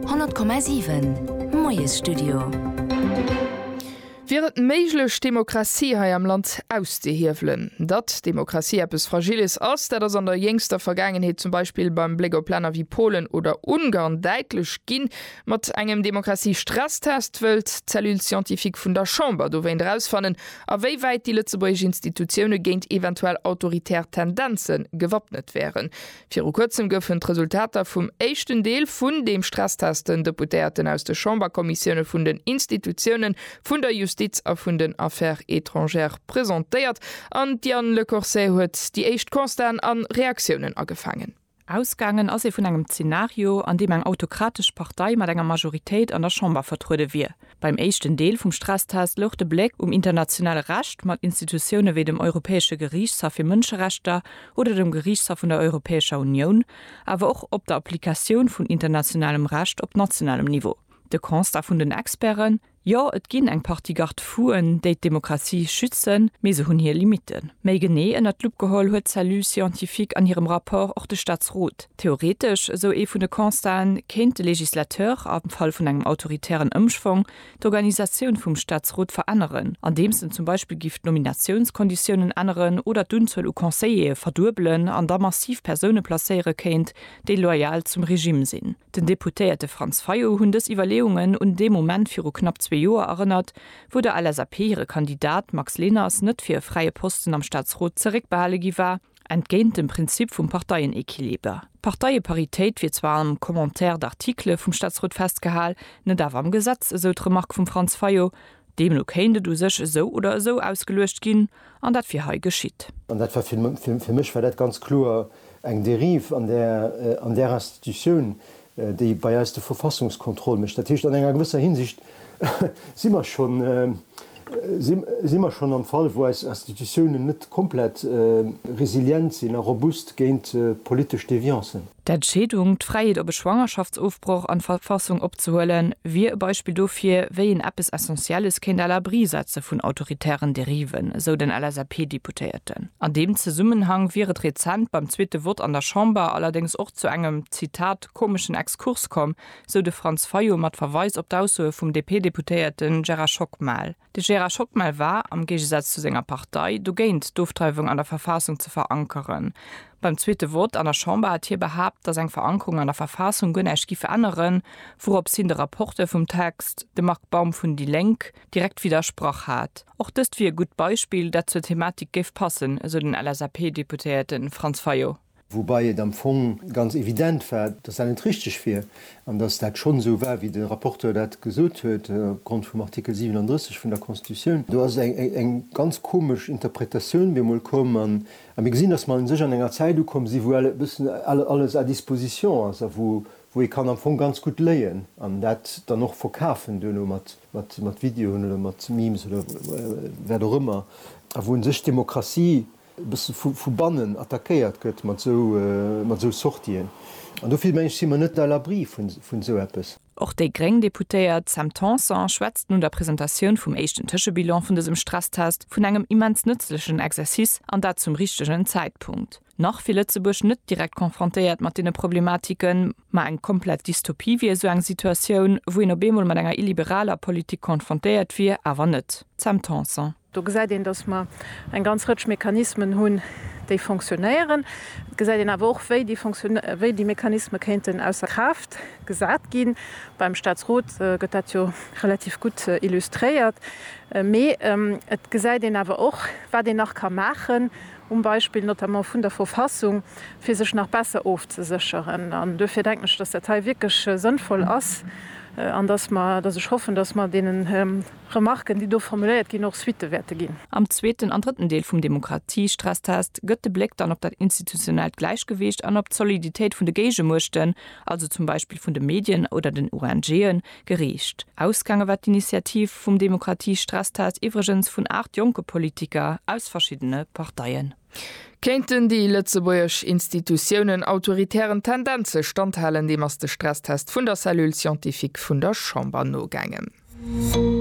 100,7 Moiesstudio. Wier et méiglech, d'Demokratie hei am Land auszehiewelen? Datt d'Demokratie eppes Fragiles ass, dat ass an der jéngster Vergaangenheet zum Beispill beim Bléck op Länner wéi Polen oder Ungarn däitlech ginn. Mat engem Demokratie-Stresstest wëllt d'Cellule scientifique vun der Chamber dowéint erausfannen, a wéi wäit déi lëtzebuergesch Institutioune géint eventuell autoritär Tendenze gewappnet wären. Viru kuerzem goufen d'Resultater vum éischten Deel vun deem Stresstest den Deputéierten aus de Chamberkommissioune vun den Institutiounen, vun der Justiz a vun den Affaires étrangères presentéiert an d'Diane Lecorsais huet déi éischt Constaten a Reaktiounen agefaangen. Ausgaangen ass ee vun engem Zenario, an deem eng autokratesch Partei mat enger Majoritéit an der Chamber vertruede wier. Beim éischten Deel vum Stresstest louch de Bléck um internationale Recht mat Institutioune wéi dem Europäesche Geriichtshaff fir Mënscherechter oder dem Geriichtshaff vun der Europäescher Unioun, awer och op der Applikatioun vun internationalem Recht op nationalem Niveau. De Constat vun den Experten, Jo, et ginn eng Partie Garde-fou'en, déi d'Demokratie schützen, mee se hunn hir Limitten. Méi genee ënnert d'Lupp geholl huet d'Cellule scientifique an hirem Rapport och de Staatsrot. Theoretesch, esou ee vun de Constaten, kéint de Législateur, am Fall vun engem autoritären Ëmschwong, d'Organisatioun vum Staatsrot veränneren, andeems en zum Beispill giff d'Nominatiounskonditiounen änneren oder d'Unzuel u Conseillere verduebelen an da massiv Persoune placéiere kéint, déi loyal zum Regime sinn. Den Deputéierte Franz Fayot hunn dës Iwwerleeungen un dee Moment viru knapp zwee Joer erënnert, wou der LSAP hire Kandidat Max Leners net fir e fräie Posten am Staatsrot zeréckbehale gi war, Entgéint dem Prinzip vum Parteienequiliber, Parteie-Paritéit, wier zwar am Commentaire d'articles vum Staatsrot festgehal, net awer am Gesetz, esou d'Remark vum Franz Fayot. Deemno kéint et u sech esou oder esou ausgeluecht ginn, an dat wier hei geschitt. An dat war, fir mech war dat ganz kloer eng Dérive an där Institutioun, déi bei eis de Verfassungskontroll mécht. Dat heescht, an enger gewësser Hinsicht si mer schonn, si mer schonn am Fall, wou eis Institutiounen net komplett resilient sinn a robust géint politesch Deviancen. D'Entscheedung, d'Fräiheet op e Schwangerschaftsofbroch an d'Verfassung opzehuelen, wier e Beispill dofir, wéi een eppes Essentielles kéint à l'abri setze vun autoritären Dériven, esou den LSAP-Deputéierten. An deem Zesummenhang wier et rezent beim zweete Vott an der Chamber allerdéngs och zu engem. Zitat, komeschen Exkurs komm, sou de Franz Fayot mat Verweis op d'Aussoe vum DP-Deputéierte Gerard Schockmel. De Gerard Schockmel war, am Géigesaz zu senger Partei, dogéint d'Ofdreiwung an der Verfaassung ze verankeren. Beim zweete Vott an der Chamber hat hie behaapt, datt eng Verankerung an der Verfaassung guer näischt giff änneren, wouroops hien de Rapporteur vum Text, de Marc Baum vun déi Lénk, direkt widdersprach hat. Och dëst wier e gutt Beispill, dat zur Thematik géif passen, esou den LSAP-Deputéierte Franz Fayot. Woubai et am Fong ganz evident war, dass dat net richtig wier an dass dat schonn esou war, wéi de Rapporteur dat gesot huet, opgrond vum Artikel 37 vun der Constitutioun. Do ass eng ganz komesch Interpretatioun bemol komm a mir gesinn, dass mer u sech an enger Zäit ukomm sinn, wou e bëssen alles à disposition ass a wou ee kann am Fong ganz gutt léien an dat dann och verkafen duerno mat Videoen oder mat Memes oder wat och ëmmer a wou u sech d'Demokratie e bësse vu bannen attackéiert gëtt mat esou Sortien. An do vill, meng ech, si mer net à l'abri vun esou eppes. Och déi gréng Deputéiert Sam Tanson schwätzt no der Presentatioun vum éischten Tëschebilan vun dësem Stresstest vun engem immens nëtzlechen Exercice an dat zum richtegen Zäitpunkt. Nach wier Lëtzebuerg net direkt confrontéiert mat deene Problematiken, ma eng komplett Dystopie wier esou eng Situatioun, wou een op eemol mat enger illiberaler Politik confrontéiert wier, awer net. Sam Tanson. Do gesäit een, dass mer eng ganz Rëtsch Mechanismen hunn, déi fonctionnéieren. Et gesäit een awer och, wéi déi fonctionné, wéi déi Mechanisme kéinten ausser Kraaft gesat ginn. Beim Statsrot gëtt dat jo relativ gutt illustréiert. Mee et gesäit een awer och, wat een nach ka maachen, um Beispill notamment vun der Verfassung, fir sech nach besser ofzesécheren. An duerfir denken ech, dass dat hei wierklech sënnvoll ass an dass mer, dass ech hoffen, dass mer deenen, Remarken, déi do formuléiert ginn, och Suitte wäerte ginn. Am zweeten an drëtten Deel vum Demokratiestresstest gëtt de Bléck dann op dat institutionellt Gläichgewicht an op d'Soliditéit vun de Géigemuechten, also zum Beispill vun de Medien oder den ONGen, geriicht. Ausgaange war d'Initiativ vum Demokratiestresstest iwwregens vun 8 jonke Politiker aus verschiddene Parteien. Kéinten déi lëtzebuergesch Institutiounen autoritären Tendenze standhalen? Deem ass de Stresstest vun der Cellule scientifique vun der Chamber nogaangen.